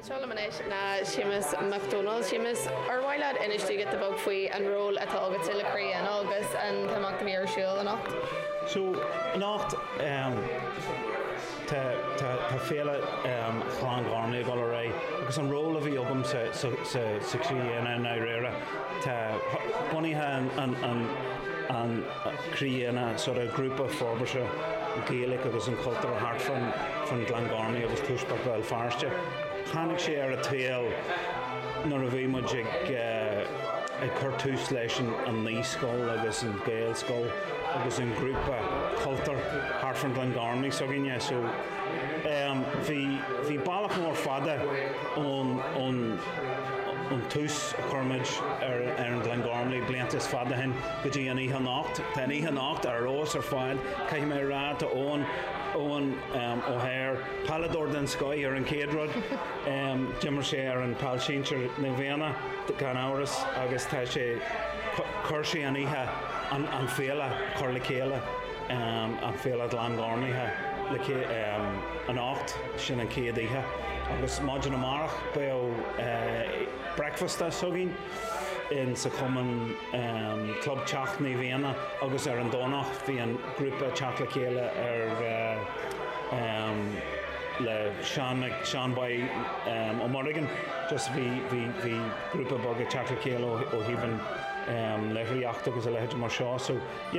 Anseo liom anois ná Séamus Mac Dónaill. Séamus, ar mhaith leat insint dúinn giota beag faoi an ról atá agatsa le Croí Éanna agus an t-imeacht a bhí ar siúl anocht? So, anocht ehm tá tá tá Féile ehm Ghleann Ghormlaithe ag dul ar aghaidh agus an ról a bhí agam sa sa sa sa Croí Éanna i ndáiríre ná bunaitheoir an an an Croí Éanna, sort of grúpa forbartha Gaeilge agus an chultúir thart fan Gleann Gormley agus Tuaisceart Bhéal Feirste. Tháinig sé ar a' tsaol nuair a bhí muid ag ag cur tús leis an naíscoil agus an Gaelscoil agus an grúpa cultúir thart fan Gleann Gormley s'againne so ehm bhí bhí bealach mór fada ón ón ón tús a chuir muid ar ar an Gleann Gormley blianta fada ó shin. go dtí an oíche anocht. Tá an oíche anocht ar fheabhas ar fad, caithfidh mé a rá, tá Eoghan, Eoghan Ó hEára, peileadóir den scoith ar an chéad rud, d'imir sé ar an pheil sinsear Naomh Éanna gan amhras agus tá sé, chuir sé an oíche, an féile chur le chéile, an féile Ghleann Ghormlaithe le chéile anocht, sin an chéad oíche agus maidin amárach beidh bricfeasta s'againn in sa Chumann, Club Teach Naomh Éanna agus ar an Domhnach beidh an grúpa ag teacht le chéile ar le Séan Mac Séaghain Bán Ó Muireagáin just bhí bhí bhí grúpa beag ag teacht le chéile ó thaobh an léitheoireachta agus a leithéid mar seo so yeah